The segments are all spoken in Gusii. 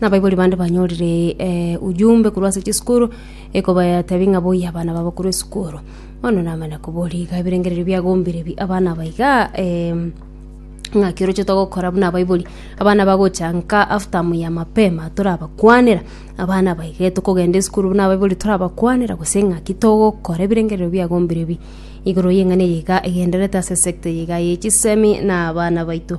Nabaibori bande banyorire ujumbe korwa ase chisukuru ekobatebi ng'a boyie abana babo korwa esukuru bono namanya koboria iga ebirengererio biagombire bi abana aba iga ng'aki oroche togokora buna abaibori abana bagocha nka after ya mapema torabakwanera abana aba iga tokogenda esukuru buna abaibori torabakwanera gose ng'aki togokora ebirengererio biagombire bi igoro y'eng'ana eye iga egendererete ase sector eye iga ya chisemi na abana baito.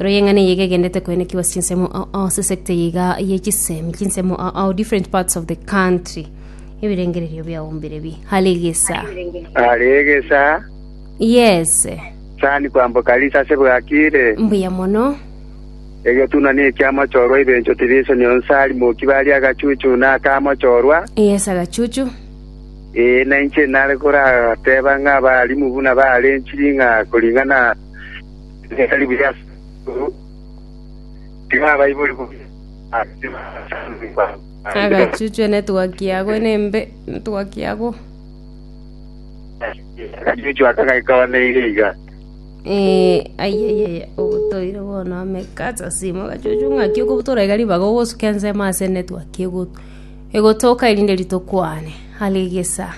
Royio eng'ana eye iga egendete koenekigwa ase chinsemo ao ase sector eye iga ye chisemi chinsemo ao different parts of the country ebirengererio biao mbirebi hare egesa Hare egesa yes sani kwamboka risa ase bwakire. mbuya mono Egetuna ne ekiamochorwa ebencho division onsi ari moki bari agachuchu na akamochorwa. yes agachuchu Ee, na inche nare korateba ng'a abarimu buna bare chiri ng'a koring'ana Ebisaku bire ase igoro tiga abaibori bobe aase abasangi babo. Agachuchwe netwaki yago enembe netwaki yago. Agachuchwe aka gaikabaneire iga. Eh, ayayaya ogotoire bono amekasa simo gachuchu ng'aki okobutora iga ribaga ogosuka ensemo ase netwaki egotoka erinde ritokwane alegesa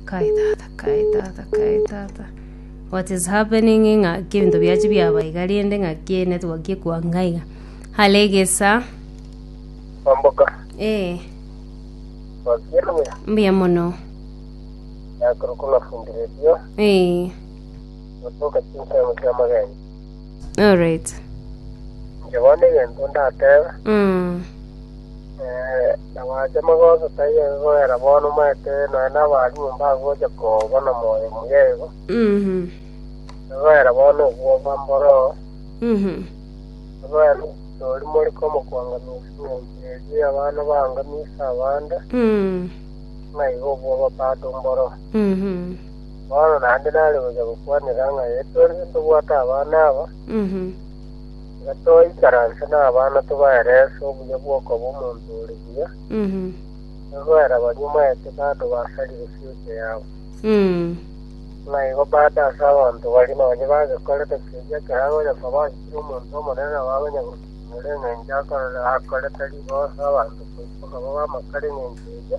Kai tata, kai tata, kai tata. What is happening ng'a kebinto biachi biaba iga rende ng'a kie network ekwa ng'a iga. Hale egesa. Omboka. Eh. Wakiera buya. Mbuya mono. Yakoro kuna fundire dio. Eh. Otoka chinsa ya mutama gani. Alright. Inche bono egento ndatebe, Mm. eh, nabache magoso taiyo iga kogera bono omanyete nonya nabaria nyomba agocha kobana moyo muya igo, Mhm. iga kogera bono obwoba mboro, Mhm. iga kogera tori mori komokwang'amisia eng'encho eria abana baang'amisia abande, Mm. ng'a iga obwoba bado mboro. Mhm. Bono naende nare gocha gokwanera ng'a tore tobwate abana aba, tiga toikaranse nabana tobaerese obuya bw'okoba omonto ore buya, egoera baria omanyete bado basarire fiocha yabo. Ng'a igo bado ase abanto baria nonye bagekorete keria ekero agocha koba achire omonto omonene nabo agocha gokumora engencho akorere akorete rigoso abanto koiboka babe amakara engencho eria.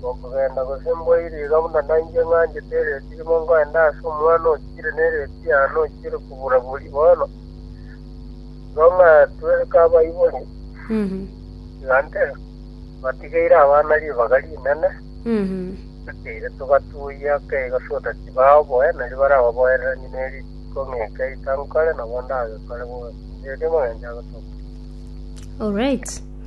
Gokogenda gose mboirie iga buna nainche ng'anchete ereeti rimo ngoende ase omwana ochire nereeti yane ochire kobura borie bono, igo ng'atwe kabaibori, tiga nte batigeire abana ribaga rinene, toteire togatuia kegosuda tibaa oboe, nari barababoereranie ne rituko ng'eke ita nkore, nabo ndagekore bobe. Erio Omogencho agotoka. Alright.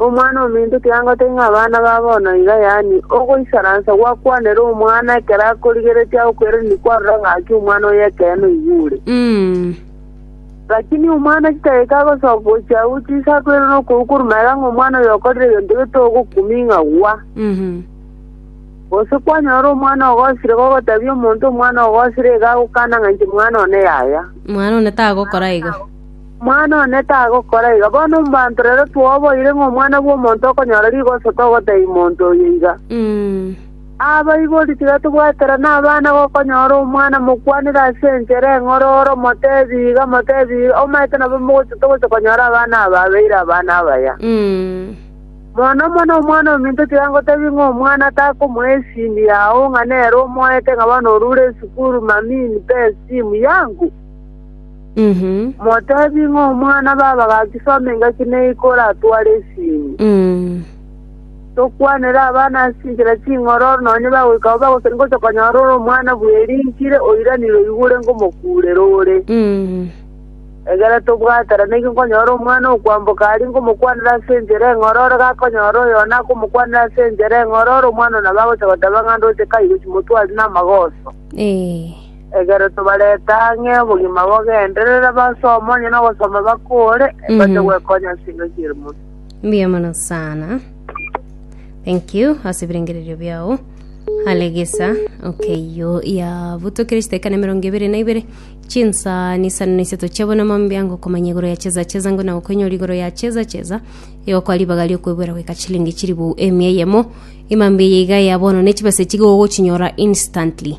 Omwana ominto kianga tai ng'a abana ba bono iga, yaani ogoisaransa gwakwanera omwana ekero akorigeretie agokweraneria kwarora ng'aki omwana oye ekeene oigwe ore. Lakini omwana chidageka agosoka gochia agwo chiisa akoirana nokoigwa korwa magega ng'a omwana oyo okorire egento getogokumi ng'a gwa. Gose kwanyora omwana ogosire gogoteebia omonto omwana ogosire iga agokana ng'a inche mwana one yaya. Mwana one tagokora igo. Omwana one tagokora iga. Bono omobanto rero twaoboire ng'a Omwana bw'Omonto okonyora rigoso togotebia monto oyo iga. Abaibori tiga tobwaterane abana gokonyora omwana mokwanere ase enchera eng'oro ore omotebi iga, omotebi iga, omaete nabo mogochia togochia konyora abana aba abeire abana abaya. Mono mono Omwana ominto tiga ngotebie ng'a omwana atakomoa esimi yao ng'a nere omoete ng'a bono orure esukuru, Mammy, nipe esimu yangu? Motebi ng'a omwana baba gakisoma engaki ne iko oratware esinyo. Tokwanere abana ase chinchera ching'ororo nonya bagoika abwo bagoseria ngocha konyora ore omwana bweri nkire oiranire oigure ngomokurera ore. Egere tobwaterane ki nkonyora omwana okwamboka aria ngomokwanera ase enchera eng'ororo gakonyora oyo one akomokwanera ase enchera eng'ororo omwana one nabo agocha goteba ng'a ndoche kaigochi motwari namagoso. Ekero tobarete ang'e obogima bogenderere, basome onye nogosoma bakore, bache Mhm. gwekonya ase enka chi'ere mono. Mbuya mono sana. Thank you ase ebirengererio biao. Alegesa okeiyo yabutokire chiteka na emerongo ebere na ibere chinsa nisano na isato chiabo na mambia ngo komanya igoro ya cheza cheza ngo na okoinyora igoro ya cheza cheza yokwa ribaga riokwebwera goika chilingi chiribu emia eyemo imambia eye iga ya bono ne chibesa chigo ogochinyora instantly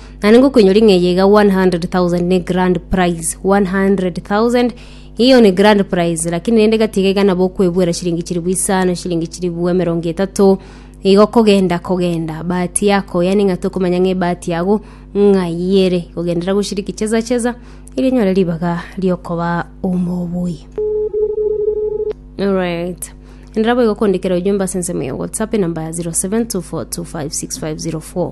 Naende ngokoinyora ing'eyi eye iga 100,000 ne grand prize 100,000 iyo ne grand prize lakini rende gatiga iga nabo okwebwera shilingi chiribu isano shilingi chiribu emerongo etato igo kogenda kogenda bahati yako yani ng'a tokomanya ng'a ebahati yago ng'ai ere kogenderera goshiriki cheza cheza eri enyore ribaga riokoba omobui Alright. Enera boigo kondikera ujumbe ase ensemo ya WhatsApp enamba ya 0724256504.